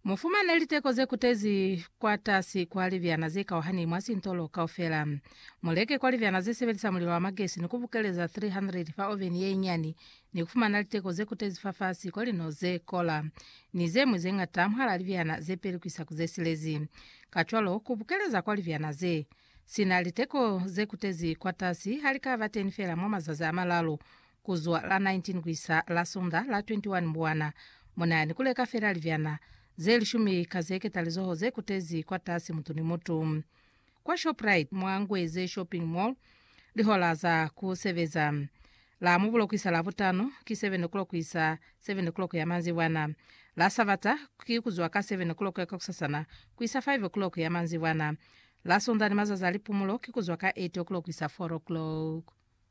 Mu fumane liteko ze kutezi kwatasi kwa libyana ze kauhani mwa sintolo kaufela. Mu leke kwa libyana ze sebelisa mulilo wa magesi ni ku bukeleza 300 fa oveni ye inyani ni ku fumana liteko ze kutezi fafasi kwa lino ze kola ni ze ñwi ze ñata mwahal'a libyana ze peli ku isa ku ze silezi. Kacwalo, ku bukeleza kwa libyana ze si na liteko ze kutezi kwatasi ha li ka ba teni fela mwa mazazi a malalu. Ku zwa la 19 ku isa la Sunda la 21 Mbuwana, mu na ni ku leka fela libyana ze lishumi ka ze ketalizoho ze kutezi kwatasi mutu ni mutu. Kwa Shoprite mwa Ngweze Shopping Mall, lihola za ku sebeza, la Mubulo ku isa la Butano, ki 7 o'clock ku isa 7 o'clock ya manzibwana. La Sabata, ki ku zwa ka 7 o'clock ya kakusasana ku isa 5 o'clock ya manzibwana. La Sunda ni mazazi a lipumulo, ki ku zwa ka 8 o'clock ku isa 4 o'clock.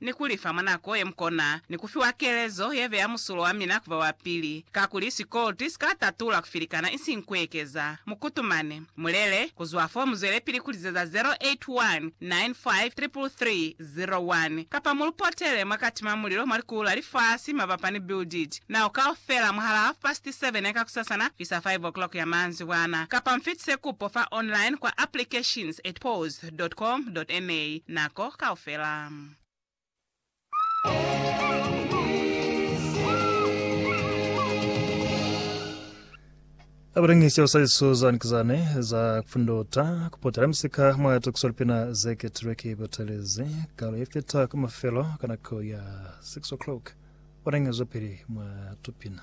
ni ku li fa mwa nako ye mu kona, ni ku fiwa kelezo ye beya musulo wa mina ku ba wa pili, kakuli sikolti si ka tatula ku filikana isiñi ku ekeza. Mu kutumane. Mu lele. Ku zwa fo mu zwelepili ku lizeza 0819533301, kapa mu lu potele mwa kati mwa mulilo mwa likulu la lifasi mabapa ni Build It Now kaufela mwahalaa half past seven ya kakusasana kuisa five o'clock ya manzibwana, kapa mu fitise kupo fa online kwa applications at pause. www.com.ma nako kaufela. Abalingisi abasali Susan Kizane za kufunduta kupotela misika mwa tukiso lipina zeketilwe ki batelezi kalo yefita ku mafelo ka nako ya 6 o'clock. Balingezwa pili mwa tupina.